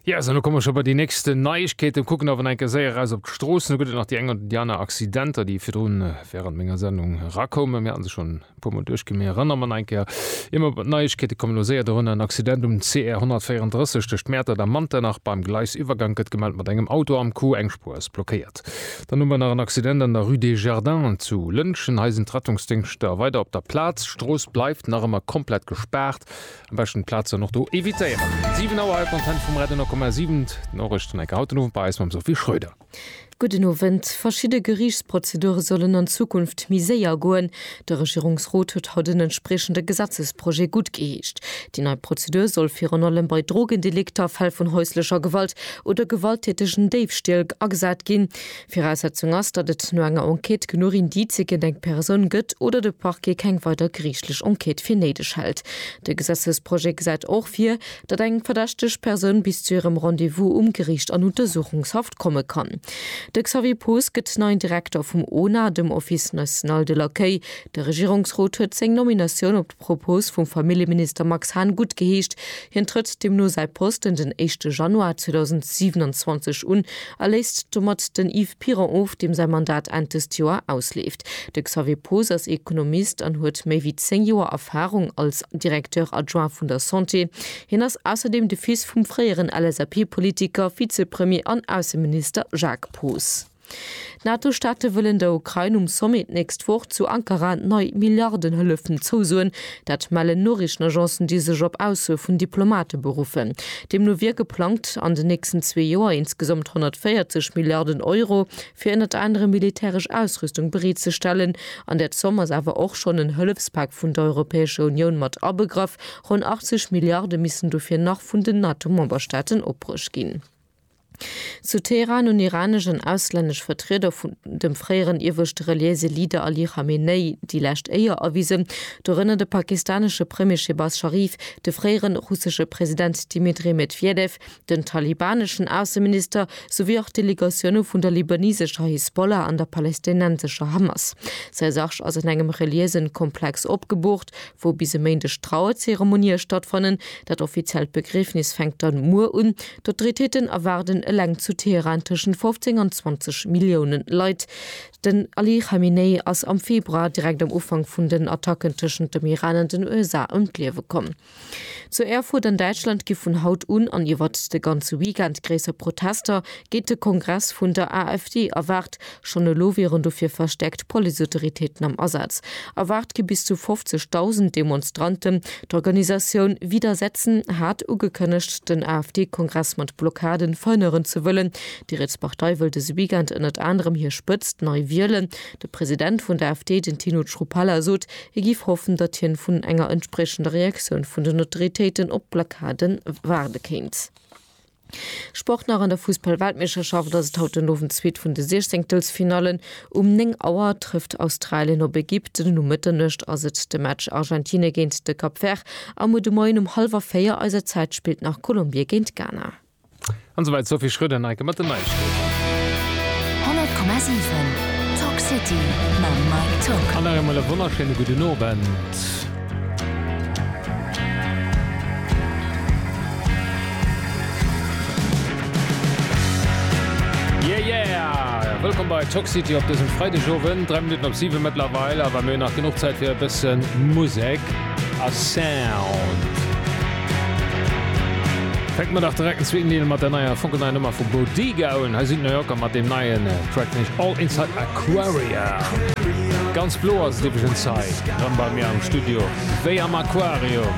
Ja, so, komme scho bei die nächsten Neiigkeeten kucken awer enke séier raus op d'Stroossen gutt nach die eng oder die aner Accidenter, déi virdrun äh, während menger Sendung rakoumen. Mir hatten se schon pummer duerchgemee rënner man enker immer mat Neiigkeete kommen no séier derun en Accident um CR 134 tëscht Mäertert a Manternach beim Gleisiwwergang gëtt gemellt mat engem Auto am Coup, eng Spuer ass blockéiert. Dann hu mer nach en Accident an der Rue des Jardins zu Lëntgen. Hei sinn d'Rettungsdéngschter weider op der Plaz. D'Strooss bleift nach ëmmer komplett gespaart. Am beschten d'Plazen och do evitéieren. 7 Auer, All Content vum Radio 10,7. D'Norechten enke haut den Owend bei eis mam Sophie Schröder. Gudden Owend. Verschidde Geriichtsprozedure sollen an Zukunft méi séier goen. De Regierungsrot huet haut en entspriechende Gesetzesprojet guttgeheescht. Déi nei Prozedur soll virun allem bei Drogendelikter, Fäll vun häuslecher Gewalt oder gewalttätegen Déifstiel agesat ginn. Viraussetzung ass, datt et no enger Enquête genuch Indizë géint eng Persoun gëtt oder de Parquet keng weider geriichtlech Enquête fir néideg hält. De Gesetzesprojet gesäit och vir, datt eng verdächteg Persoun bis zu hirem Rendez-vous um Geriicht an Untersuchungshaft komme kann. De Xavier Poos gëtt neien Direkter vum ona, dem Office national de l'accueil. De Regierungsrot huet seng Nominatioun op. Propos vum Familljeminister Max Hahn gutt geheescht. Hien trëtt deemno säi Posten den éischte Januar 2027 un a léisst domat den Yves Piron of, deem säi Mandat Enn dëst Joer ausleeft. De Xavier Poos ass Ekonomist an huet méi wéi zéng Joer Erfarung als Directeur adjoint vun der Santé. Hien ass ausserdeem de Fils vum fréieren LSAP-Politiker, Vizepremier an Ausseminister Jacques Poos. D'NATO-Staate wëllen der Ukrain um Sommet d'nächst Woch zu Ankara nei Milliardenhëllefen zousoen. Dat mellen Noriichtenagencen, déi sech op Aussoe vun Diplomate beruffen. Deemno wier geplangt, an den nächsten zwee Joer insgesamt 140 Milliarden Euro fir ënnert anerem militäresch Ausrüstung bereet ze stellen. An där Zomm ass awer och schonn en Hëllefspak vun der Europäescher Unioun mat abegraff. Ronn 80 Milliarde missten dofir nach vun den NATO-Memberstaaten opbruecht ginn. Zu Teheran hunn iranesch an auslännesch Vertrieder vun dem fréieren ieweschte reliéise Leader Ali Khamenei déi lescht Éier erwisen, dorënner de pakistanesche Premier Shehbaz Sharif, de fréiere russesche President Dmitri Medwedew, den talibaneschen Ausseminister, souwéi och Delegatioune vun der libanesescher Hisbollah an der palästinensescher Hamas. Säi Sarg ass an engem reliéisen Komplex opgeboocht, wou bis e Méindeg d'Trauerzeremonie stattfannen. Dat offiziellt Begriefnis fänkt dann muer un. D'Autoritéiten erwaarden eleng zu Teheran tëschent 15 an 20 Millioune Leit. Den Ali Khamenei ass am Februar, direkt am Ufank vun den Attacken tëschent dem Iran an den USA, ëm d'Liewe komm. Zu Erfurt an Däitschland gi vun haut un an iwwert de ganze Weekend gréisser Protester géint de Kongress vun der AfD erwaart. Schonn elo wieren dofir verstäerkt Policeautoritéiten am Asaz. Erwaart gi bis zu 50.000 Demonstranten. D'Organisatioun Widersetzen hat ugekënnegt, den AfD-Kongress mat Blockaden verhënneren ze wëllen. Déi riets Partei wëll dëse Weekend ënnert anerem hir Spëtzt nei wielen. De President vun der AfD, den Tino Chrupalla, sot, hie géif hoffen, datt hien vun enger entspriechender Reaktioun vun den Autoritéiten op d'Blockade waarde kéint. Sport nach an der Fussball-Weltmeeschterschaft ass et haut den Owend d'zweet vun de Siechzenktelfinallen. Um 9 Auer trëfft Australien op Ägypten an um Mëtternuecht ass et de Match Argentine géint de Cap Vert. A muer de Moien um hallwer 4 eiser Zäit spillt nach Kolumbie géint Ghana. An esou weit d'Sophie Schröder, Neike mat den Neiegkeeten. 100,7 Talk City mam Mike Tock. An nach eemol e wonnerschéine gudden Owend. Yeah yeah! Wëllkomm bei Talk City op dësem Freidegowend, 3 Minutten op 7 mëttlerweil, awer mir hunn nach genuch Zäit fir e bëssen Musek a Sound. Fänke mer dach direkt en zweeten Deel mat der neier, funkelneier Nummer vu Bodiga un. Hei sinn d'New Yorker mat deem neien Track, nämlech All Inside My Car. Quaria. Ganz blo ass et iwwregens hei rem bei mir am Studio, wéi am Aquarium.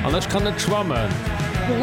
An ech kann net schwammen.